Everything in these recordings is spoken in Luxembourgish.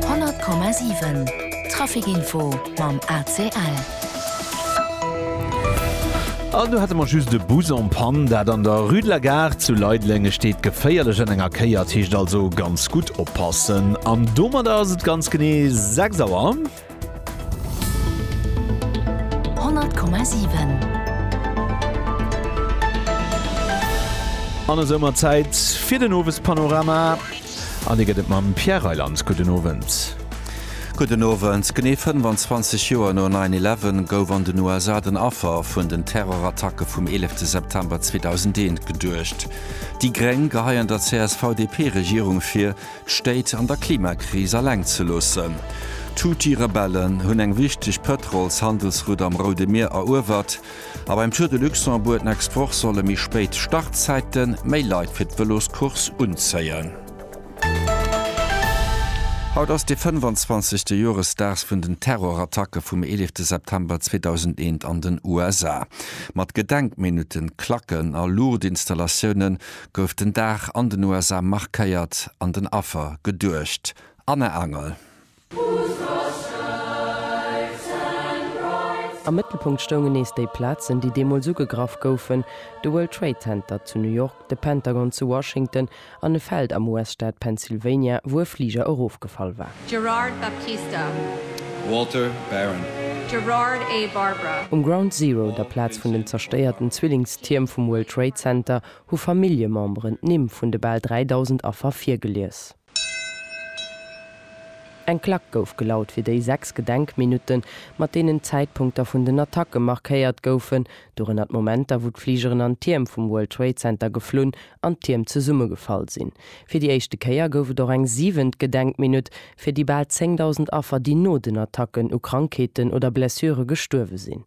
100,7 Traficinfo mam ACL. An do hate mer just e Bus en Panne, dat an der Rue de la Gare zu Leideleng. E steet geféierlech an enger Kéier, et heescht also ganz gutt oppassen. An domadder ass et ganz genee 6 Auer. 100,7. An esou mer Zäit fir den Owespanorama an dee gëtt et mam Pierre Reyland. Gudden Owend. Gudden Owend. Genee 25 Joer no 'Nine Eleven' gouf an den USA den Affer vun den Terrorattacke vum 11 September 2001 geduecht. Déi Gréng geheien der CSV-DP-Regierung vir, D'Stéit an der Klimakris alleng ze loossen. D'Houthi-Rebellen hunn eng wichteg Pëtrols-Handelsroute am Roude Mier eruewert a beim Tour de Luxembourg den Export solle méi spéit Startzäite méi Leit fir d'Vëloscourse unzéien. Haut ass de 25. Joresdag vun den Terrorattacke vum 11 September 2001 an den USA. Mat Gedenkminutten, Klacken a Luuchtinstallatioune gouf den Dag an den USA markéiert, an den Affer geduecht. Anne Angel. Am Mëttelpunkt stoungen nees déi Plazen, déi deemools ugegraff goufen, de World Trade Center zu New York, de Pentagon zu Washington an e Feld am US-Staat Pennsylvania, wou e Fliger erofgefall war. Gerard Baptista. Walter Barron. Gerard A. Barbara. Um Ground Zero, der Plaz vun den zerstéierten Zwillingstierm vum World Trade Center, hu Familljememberen d'Nimm vun de bal 3.000 Affer virgelies. Eng Klack gouf gelaut fir déi sechs Gedenkminutten, mat deenen d'Zäitpunkter vun den Attacke markéiert goufen, dorënner d'Momenter, wou d'Fligeren an d'Tierm vum World Trade Center geflunn an d'Tierm zesummegefall sinn. Fir déi éischte Kéier gouf et och eng siwent Gedenkminutt fir déi bal 10.000 Affer, déi no den Attacken u Krankheeten oder Blessure gestuerwe sinn.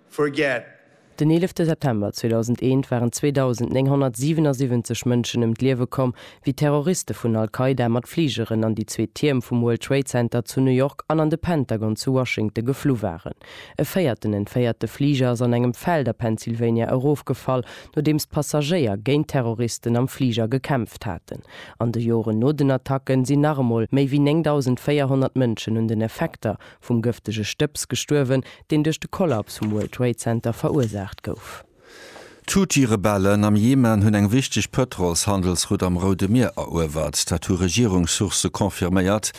forget. Den 11 September 2001 waren 2.977 Mënschen ëm d'Liewe komm, wéi Terroriste vun Al-Qaida mat Fligeren an déi zwee Tierm vum World Trade Center zu New York an an de Pentagon zu Washington geflu waren. E véierten entféierte Fliger ass an engem Feld a Pennsylvania erofgefall, nodeems d'Passagéier géint d'Terroristen am Fliger gekämpft haten. An de Joren no den Attacken sinn nach emol méi wéi 9.400 Mënschen un den Effekter vum gëftege Stëbs gestuerwen, deen duerch de Kollaps vum World Trade Center verursaacht gouf. D'Houthi-Rebellen am Jemen hunn eng wichteg Pëtrolshandelsroute am Roude Mier eruewert. Dat hu Regierungssourcë confirméiert.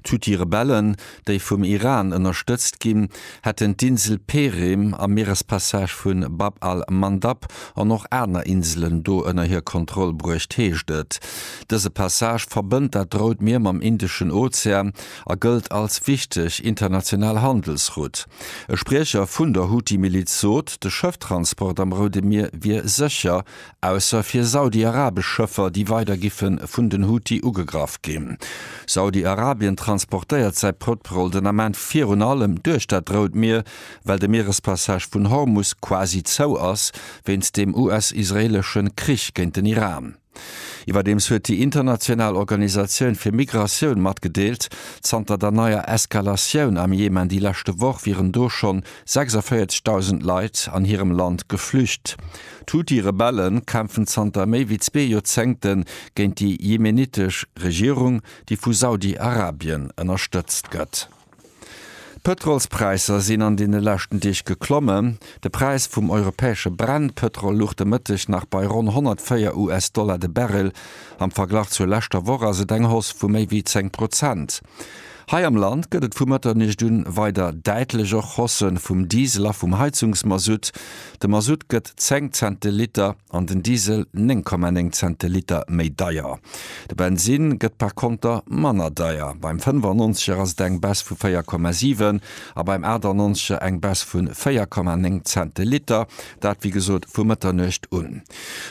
D'Houthi-Rebellen, déi vum Iran ënnerstëtzt ginn, hätten d'Insel Perim am Mierespassage vu Bab al-Mandab an och aner Inselen do ënner hir Kontroll bruecht, heescht et. Dëse Passage verbënnt dat Rout Mier mam Indeschen Ozean a gëllt als wichteg international Handelsrutt. E Spriecher vun der Houthi-Miliz sot, de Schëfftransport am Roude Mier wier sécher, ausser fir saudi-arabesch Schëffer, déi weider giffe vun den Houthi ugegraff ginn. Saudi-Arabien transportéiert säi Pëtrol den Ament virun allem duerch dat Rout Mier, well de Mierespassage vun Hormus quasi zou ass, wéinst dem US-israeelesche Krich géint den Iran. Iwwerdeems huet déi international Organisatioun fir Migratioun matgedeelt, zanter der neier Eskalatioun am Jemen déi leschte Woch wieren do schonn 46.000 Leit an hirem Land geflücht. D'Huthi-Rebelle kämpfen zanter méi wéi zwee Joerzéngte géint déi jemenittesch Regierung, déi vu Saudi-Arabien ënnerstëtzt gëtt. D'Pëtrolspräisser sinn an deene leschten Deeg geklommen. De Präis vum europäesche Brennpëtrol luch de Mëtteg nach bei ronn 104 US-Dollar de Barrel. Am Verglach zur leschter Woch ass et eng Hausse vu méi wéi 10 Prozent. Hei am Land gëtt et vu Mëtternuecht un weider däitlech och Hausse vum Diesel a vum Heizungsmasutt. De Masutt gëtt 10 Cent de Liter. an den Diesel 9,9 Cent de Liter méi deier. De Bensin gëtt par konter manner deier, beim 95er ass et eng Baisse vu 4,7 a beim 98er eng Baisse vu 4,9 Cent de Liter, dat wéi gesot vu Mëtternuecht un.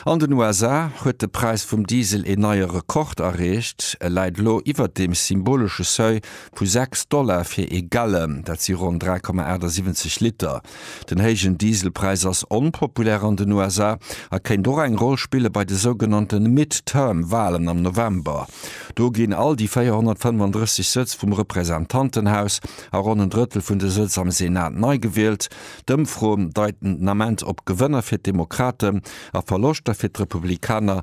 An den USA huet de Präis vum Diesel een neie Rekord erreecht, e läit elo iwwert dem symbolesche Seuil vu 6 Dollar fir ee Gallon, dat si ronn 3,78 Liter. Den héijen Dieselpräis ass onpopulär an den USA a kéint och eng Roll spille bei de sougenannte Midterm-Walen am November. Do ginn all déi 435 Sëtz vum Representantenhaus a ronn en Drëttel vun de Sëtz am Senat nei gewielt. D'Ëmfroen deiten den Ament op Gewënner fir d'Demokraten a Verloschter fir d'Republikaner.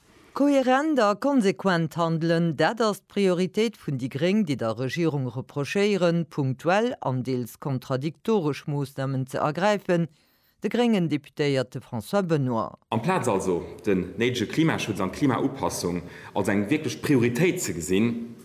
Kohärent a konsequent handelen, dat ass d'Prioritéit vun déi Gréng, déi der Regierung reprochéieren, punktuell an deels kontradiktoresch Moossnamen ze ergräifen, de gréngen Deputéierte François Benoy. Amplaz also den néidege Klimaschutz an d'Klimaupassung als eng wierklech Prioritéit ze gesinn,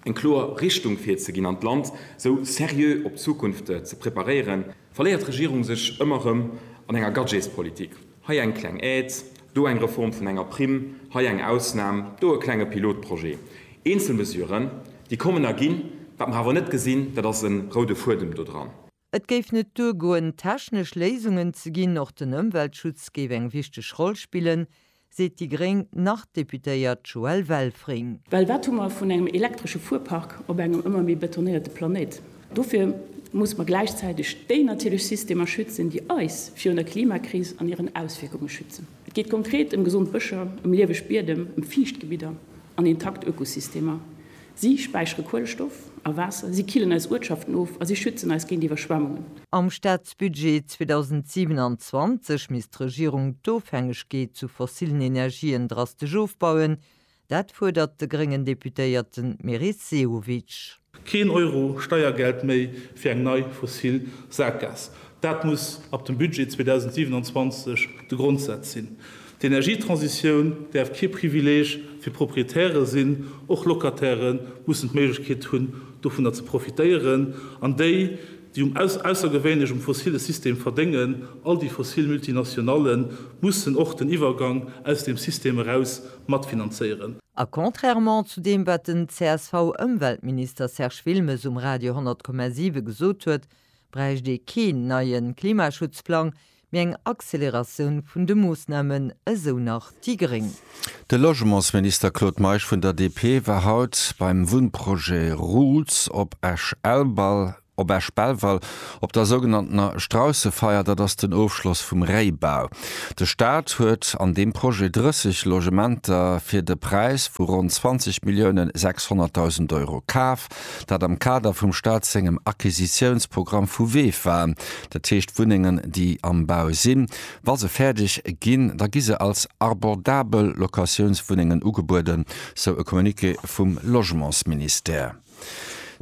eng kloer Richtung virzeginn an d'Land sou seriö op d'Zukunft ze preparéieren, verléiert d'Regierung sech ëmmer erëm an enger Gadgetspolitik. Hei eng kleng Aide, do eng Reform vun enger Primm, hei eng Ausnam, do e klenge Pilotprojet. Eenzel Mesuren, déi kommen a ginn. Wat mer awer net gesinn, dat ass e roude Fuedem do dran. Et géif net duergoen, technesch Léisungen ze ginn. Och den Ëmweltschutz géif eng wichteg Roll spillen, seet déi gréng Nord-Deputéiert Joëlle Welfring. Well wat hu mer vun engem elektresche Fuerpark op engem ëmmer méi betonéierte Planéit? Dofir musse mer gläichzäiteg déi natierlech Systemer schützen, déi eis virun der Klimakris an hiren Auswierkunge schützen. Et geet konkret ëm gesond Bëscher, ëm lieweg Biedem, ëm Fiichtgebidder an intakt Ökosystemer. Si späichere Kuelestoff a Waasser, si killen eis Uertschaften of a si schützen eis géint Iwwerschwemmungen. Am Staatsbudget 2027 misst d'Regierung d'Ofhängegkeet zu fossillen Energien drastesch ofbauen, Dat fuerdert de gréngen Deputéierten Meris Sehovic. Keen Euro Steiergeld méi fir eng nei fossil Sackgaass, dat muss ab dem Budget 2027 de Grondsaz sinn. D'Energietransitioun däerf kee Privileeg fir Proprietäre sinn, och Locatairë mussen d'Méiglechkeet hunn, dovunner ze profitéieren, an déi, déi um aussergewéinlech um fossille System verdéngen, all déi fossil Multinationallen, mussen och den Iwwergang aus deem System eraus matfinanzéieren. A contrairement zu deem, wat den CSV-Ëmweltminister Serge Wilmes um Radio 100,7 gesot huet, bräicht ee keen neie Klimaschutzplang, mee eng Acceleratioun vun de Moossnamen, esou nach déi gréng. De Logementsminister Claude Meisch vun der DP war haut beim Wunnprojet Roots op Esch-Elbal Op Esch-Belval, op der sougenanntener Straussefeier, dat ass den Ofschloss vum Réibau. De Staat huet an deem Projet 30 Logementer fir de Präis vu ronn 20 Milliounen 600.000 Euro kaf, dat am Kader vum Staat sengem Acquisitiounsprogramm vu VEFA, dat heescht Wunnengen, déi am Bau sinn. Wa se fäerdeg ginn, da gi se als abordabel Locatiounswunnengen ugebueden, sou e Communiqué vum Logementsministère.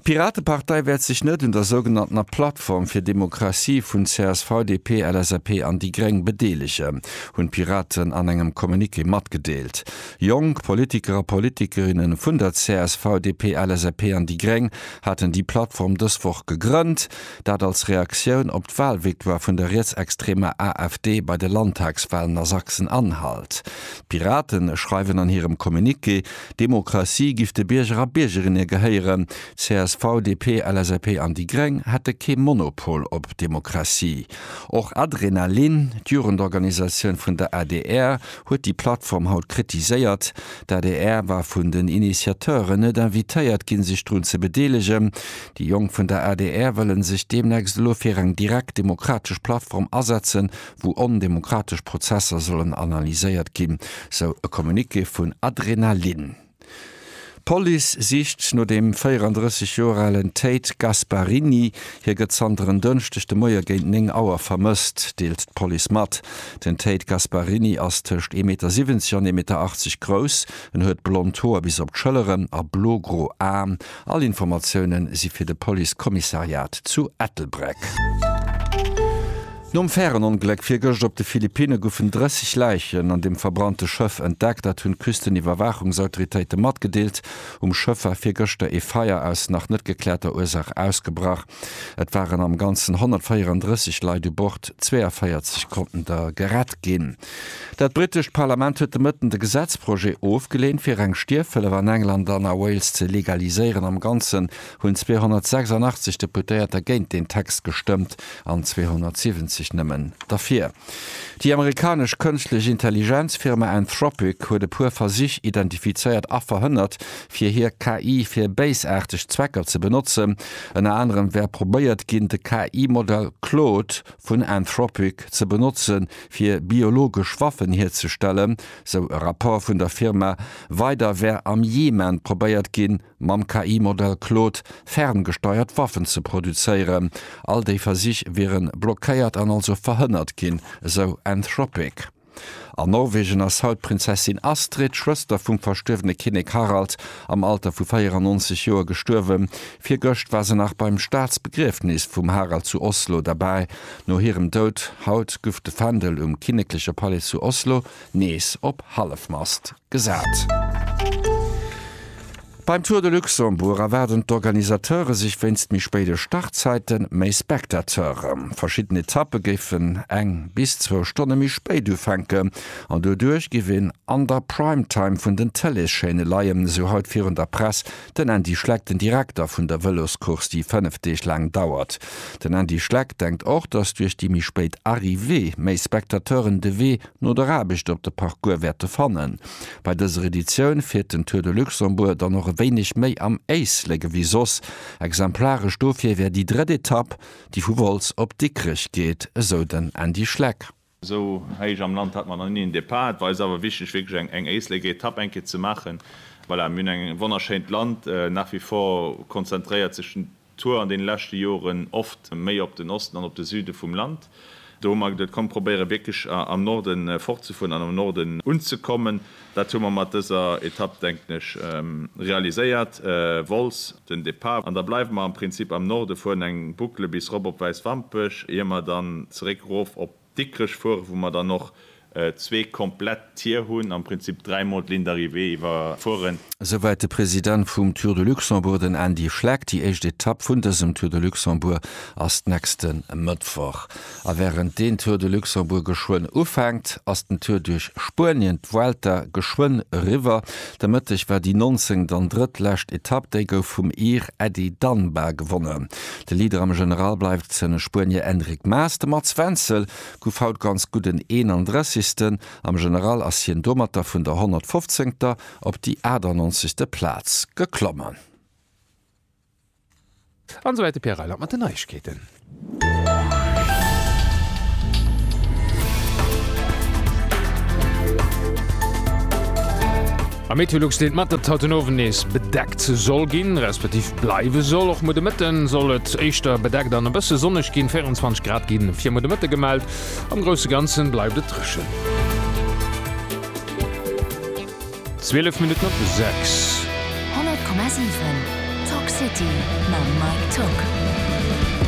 D'Piratepartei wäert sech net un der sougenanntener Plattform fir Demokratie vun csv, DP, LSAP an déi Gréng bedeelegen, hunn d'Piraten an engem Communiqué matgedeelt. Jonk Politiker a Politikerinne vun der csv, DP, LSAP an déi Gréng haten déi Plattform dës Woch gegrënnt, dat als Reaktioun op d'Walvictoire vun der rietsextremer AfD bei de Landtagswalen a Sachsen-Anhalt. D'Piraten schreiwen an hirem Communiqué, D'Demokratie giff de Bierger a Biergerinne gehéieren. CSV, DP, LSAP an déi Gréng hätte kee Monopol op Demokratie. Och Adrenalin, d'Jugendorganisatioun vun der adr, huet déi Plattform haut kritiséiert. D'adr war vun den Initiateuren net invitéiert ginn, sech drun ze bedeelegen. Déi Jonk vun der adr wëlle sech deemnächst elo fir eng direkt demokratesch Plattform asetzen, wou ondemokratesch Prozesser sollen analyséiert ginn, sou e Communiqué vun Adrenalin. D'Police sicht no dem 34 Joer alen Tate Gasparini. Hie gëtt zanter en Dënschdeg de Moie géint 9 Auer vermësst, deelt d'Police mat. Den Tate Gasparini ass tëscht ee Meter 70 an ee Meter 80 grouss. En huet blond Hoer bis op d'Schëlleren a blo-gro Aen. All Informatiounen si fir de Police Commissariat zu Ettelbreck. Nom Färenongléck virgëscht op de Philippinne goufen 30 Läichen an dem verbrannte Schëff entdeckt. Dat hunn d'Küsteniwwerwaachungsautoritéite matgedeelt. Um Schëff war virgëschter ee Feier aus nach net gekläerter Ursaach ausgebrach. Et waren am Ganzen 134 Leit u Bord, 42 konnten der gerett ginn. Dat brittescht Parlament huet de Mëtten de Gesetzprojet ofgeleent, fir reng Stierfhëllef an England an a Wales ze legaliséieren. Am Ganzen hunn 286 Deputéierter géint deen Text gestëmmt an 270 nëmmen derfir. Déi amerikanesch kënschtlech Intelligenz-Firma Anthropic huet e puer Versich identifizéiert a verhënnert, fir hir KI fir béisaarteg Zwecker ze benotzen. Ënner anerem wär probéiert ginn, de KI-Modell Claude vun Anthropic ze benotze fir biologesch Waffen hierzestellen, sou e Rapport vun der Firma. Weider wär am Jemen probéiert ginn, mam KI-Modell Claude ferngesteiert Waffen ze produzéieren. All déi Versich wiere blockéiert an also verhënnert ginn, esou Anthropic. An Norwegen ass haut d'Prinzessin Astrid, Schwëster vum verstuerwene Kinnek Harald, am Alter vu 94 Joer gestuerwen. Virgëscht war se nach beim Staatsbegriefnis vum Harald zu Oslo derbäi. No hirem Doud haut guff de Fändel um kinnekleche Palais zu Oslo nees op Hallefmast. Gesat. Beim Tour de Luxembourg erwaarden d'Organisateure sech wéinst méi spéide Startzäite méi Spectateure. Verschidden Etappe géifen eng bis zwou Stonne méi spéit ufänken an doduerch géif een an der Prime Time vun den Tëleeschaîne leien, esou haut virun der Press den Andy Schleck, den Direkter vun der Vëloscourse, déi fënnef Deeg laang dauert. Den Andy Schleck denkt och, datt duerch déi méi spéit Arrivée méi Spectateuren de Wee no der Aarbecht op de Parcours wäerte fannen. Bei dëser Editioun fiert den Tour de Luxembourg dann och e wéineg méi am Éislek ewéi soss. Exemplaresch dofir wär déi drëtt Etapp, déi vu Wolz op Dikrech geet, esou den Andy Schleck. Esou héich am Land hat mer nach ni en Depart. Et war eis awer wichteg wierklech eng Éisleker Etapp eng Kéier ze maachen. Voilà, mir hunn eng wonnerschéint Land nach wie vor, konzentréiert sech den. Tour an deene leschte Joren oft méi op den Osten an op de Süde vum Land. Do hu mer geduet, komm, probéiere wierklech am Norde fortzefueren an am Norde unzekommen. Dat hu mer mat dëser Etapp, denken ech, realiséiert. Wolz den Depart an da bleiwe mer am Prinzip am Norde, fueren eng Boucle bis erop op Wäiswampech, ier mer dann zeréck erof op. Dikrech fuere, wou mer dann och zwee komplett Tier hunn, am Prinzip dräimol d'Ligne d'arrivée iwwerfueren. Esouwäit de President vum Tour de Luxembourg, den Andy Schleck. Déi éischt Etapp vun dësem Tour de Luxembourg ass nächste Mëttwoch. A wärend deen Tour de Luxembourg geschwënn ufänkt, ass den Tour duerch Spuenien, d'Vuelta, geschwënn eriwwer. De Mëtteg war déi nonzéngt an drëttlescht Etapp, déi gouf vum Ir Ady Dunbar gewonnen. De Leader am General bleift den Spuenier Enric Maas. De Mats Wenzel gouf haut ganz gutt en 31. Am General ass hien domatter vun der 115. op déi 98. Plaz geklommen. An esouwäit de Pierre Reiland mat den Neiegkeeten. Am Meteolux deet mat, datt et haut den Owend nees bedeckt soll ginn, resp. Bleiwe soll. Och muer de Mëtte soll et éischter bedeckt an e bësse sonneg ginn, 24 Grad gi fir muer de Mëtte gemellt. Am grousse Ganze bleift et dréchen. 12 Minutten op 6.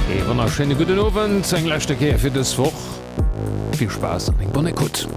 Ee wonnerschéine gudden Owend, eng leschte Kéier fir dës Woch. Vill Spaass an eng bonne Ecoute.